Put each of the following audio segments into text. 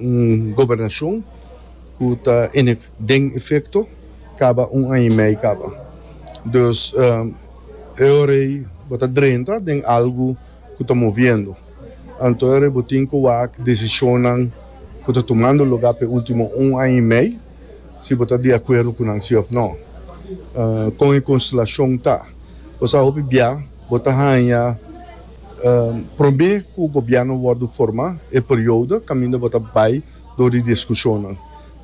Un gobernashon ku ta den efekto kaba un aña i mei kaba. Dus e ora ei bo ta drenta den algu ku ta moviendo. Anto e ora ei bo tin ku wak desishonnan ku ta tumando lugá pa e último un aña i mei, si bo ta di akuerdo ku nan si òf nò. Kon e konstelashon ta? Bo sa hopi bia bo ta haña Promé ku gobièrnu wòrdu formá e periodo kaminda bo ta bai dor di diskushonnan.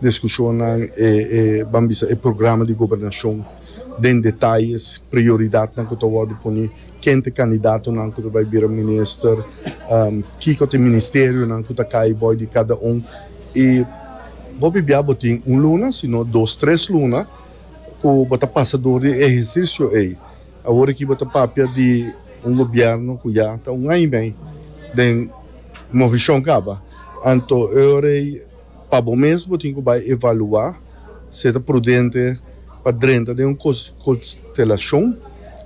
Diskushonnan e, ban bisa, e programa di gobernashon den detayes, prioridatnan ku ta wòrdu pone, ken ta e kandidatonan ku ta bai bira minister, kiko ta e ministerionan ku ta kai bòi di kada un. I bo bibiá bo tin un luna sino dos tres luna ku bo ta pasa dor di e ehersisio ei. Awor aki bo ta papia di un gobièrnu ku ya ta un aña mei den movishon kaba. Anto e ora ei pa bo mes bo tin ku bai evaluá si e ta prudente pa drenta den un konstelashon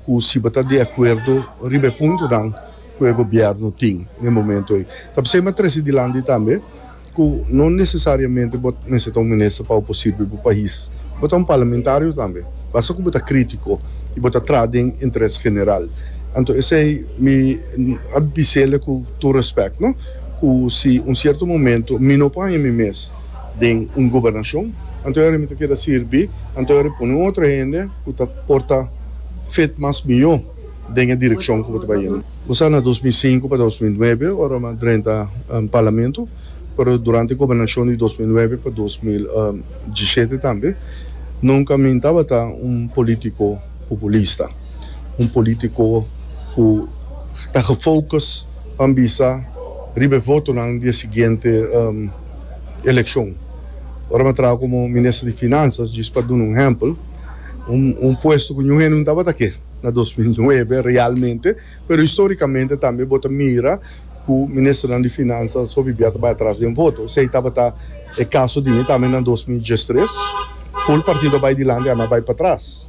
ku si bo ta di akuerdo riba e puntunan ku e gobièrnu tin den momentu ei. Ta p'esei mi a trese dilanti tambe. ku no nesesariamente bo mester ta un minister pa bo por sirbi bo pais. Bo ta un parlamentario tambe, basta ku bo ta kritiko i bo ta traha den interes general. Anto esei mi a bise'le ku tur respèkt no, ku si un sierto momento mi no por haña mi mes den un gobernashon, anto yari mi ta keda sirbi, anto yari pone un otro hende ku ta por ta fit mas mihó den e direkshon ku bo ta bai. Bo sa na dos mil sinku pa dos mil nuebe ora mi a drenta Parlamento, pero durante e gobernashon di dos mil nuebe pa dos mil diesiete tambe, nunka mi tabata un polítiko populista, un polítiko ku ta gefokus pa bisa riba e votonan di e siguiente elekshon. Ora mi a traha komo Minister di Finansas, djis pa duna un ehèmpel, un puesto ku ñuhende no tabata ke. na dos mil nuebe realmente, pero historicamente tambe bo ta mira cu Ministernan di Finansa so bibia ta bai atras den voto. Esey tabata e caso di mi tambe na dos mil diestres. Full partido a bai dilanti, ami a bai patras.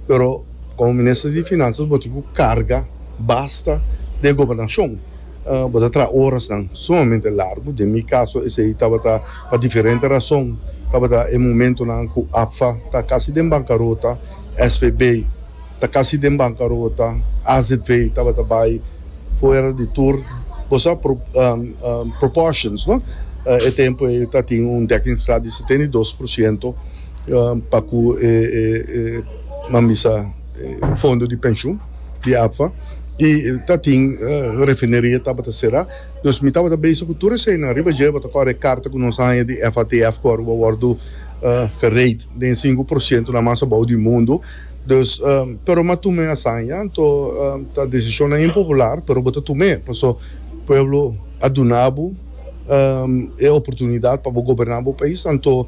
Pero como Minister di Finanzas bo tin cu carga basta den gobernacion. Bo ta traha orasnan sumamente largu. Den mi caso esey tabata pa diferente razon, tabata e momentonan cu APFA ta casi den bancarota. SVB ta kasi den bankarota, AZV tabata bai fuera di tur bo sa proportions no, e tempo ei ta tin un dekkingsgraad di setenta i dos por siento pa ku e mambisa fondo di penshun di APFA i ta tin refineria tabata será, dus mi tabata bezig ku tur eseinan riba dje bo ta kore e karta ku nos a haña di FATF ku a wòrdu. verheid den sinku por sientonan mas abou di mundu dus pero m'a tum'é hasaña anto ta desishonnan impopular pero bo ta tum'é paso pueblo a duna bo e oportunidat pa bo goberná bo pais anto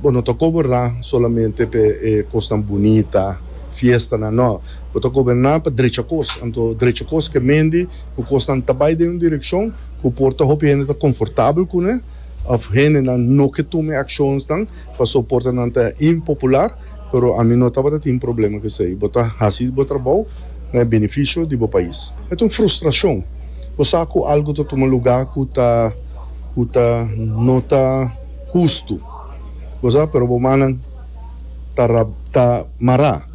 bo no ta goberná solamente p'e e kosnan bunita fiestanan nò bo ta goberná pa drecha kos anto drecha kos ke mendi ku kosnan ta bai den un direkshon ku por ta hopi hende ta konfortabel kuné. Of hendenan no ke tuma e akshonsnan paso por ta nan ta impopular, pero ami no tabata tin problema ku esei. Bo ta hasi bo trabou na e benefisio di bo pais. E ta un frustrashon. Bo sa ku algu ta tuma lugá ku ta ku ta no ta hustu, bo sa, pero bo mannan ta ra ta mará.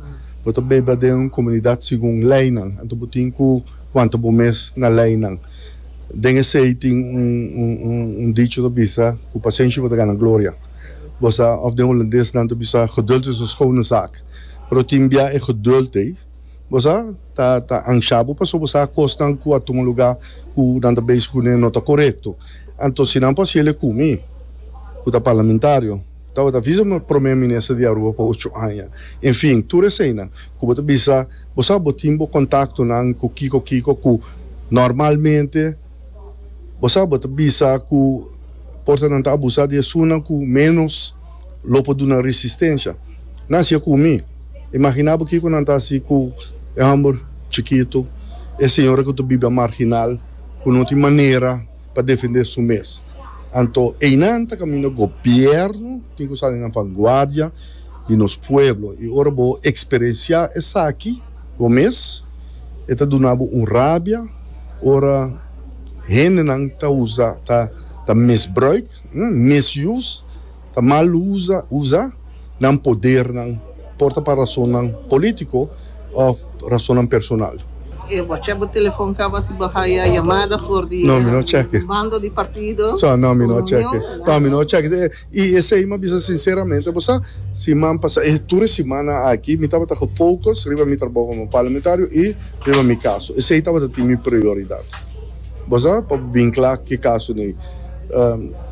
Bo ta biba den un komunidat segun leinan, anto bo tin ku wanta bo mes na leinan. Den esei tin un dicho ta bisa, Cu pasenshi bo ta gana gloria. Bo sa, of den Hulandes nan ta bisa, Geduld is een schone zaak. Pero tin bia e geduld ei, bo sa, ta ansha bo pasobra bo sa akosnan cu a tuma luga cu nan ta bezig cune no ta corecto. Anto si nan por haci el e cumi cu ta parlamentario, Tabata bisa mi Prome Minister di Aruba pa ocho aña. En fin, tur eseinan ku bo ta bisa, bo sa bo tin bo kontaktonan ku kiko kiko ku normalmente bo sa bo ta bisa ku por ta nan ta abusá di esunnan ku ménos lo por duna resistensia. Nan siña ku mi. Imaginá bo kiko nan ta hasi ku e hòmber chikitu, e señora ku ta biba marginal, ku no tin manera. pa defendé su mes. Anto einan ta kaminda gobièrnu tin ku sali na vanguardia di nos pueblo. I ora bo eksperensiá esaki bo mes, e ta duna bo un rabia ora hendenan ta usa, ta ta misbruik, misused. ta mal usa usa nan podernan, por ta pa rasonnan polítiko òf rasonnan personal. E wacha bo telefòn kaba si bo haya yamada for di e bando di partido ku union. I esei mi a bisa sinseramente, bo sa, siman pasá, e tur e simana aki mi tabata ku fokus riba mi trabou komo parlamentario i riba mi kaso. Esei tabata tin mi prioridat. Bo sa, pa bo bin kla ki kaso n'ey,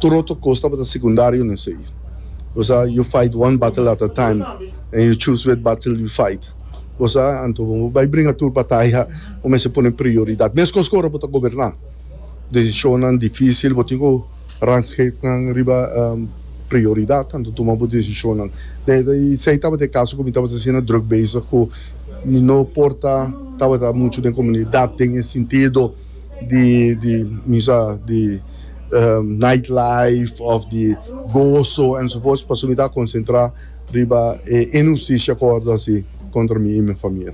tur otro kos tabata sekundario n'esey. Bo sa, you fight one battle at a time, and you choose wet battle you fight. Bo sa, anto bo bai bringa tur bataya, bo mester pone prioridat. Meskos ku ora bo ta goberná, desishonnan difísil bo tin ku. Rangschiktnan riba prioridad anto tuma bo decisionnan. Esei tabata e caso cu mi tabata asina druk bezig cu mi no por ta tabata mucho den comunidad den e sintido di di mi sa di night life of di gozo enzovoorts pasobra mi ta concentra riba e inhusticia cu a wordo haci contra mi y mi famia.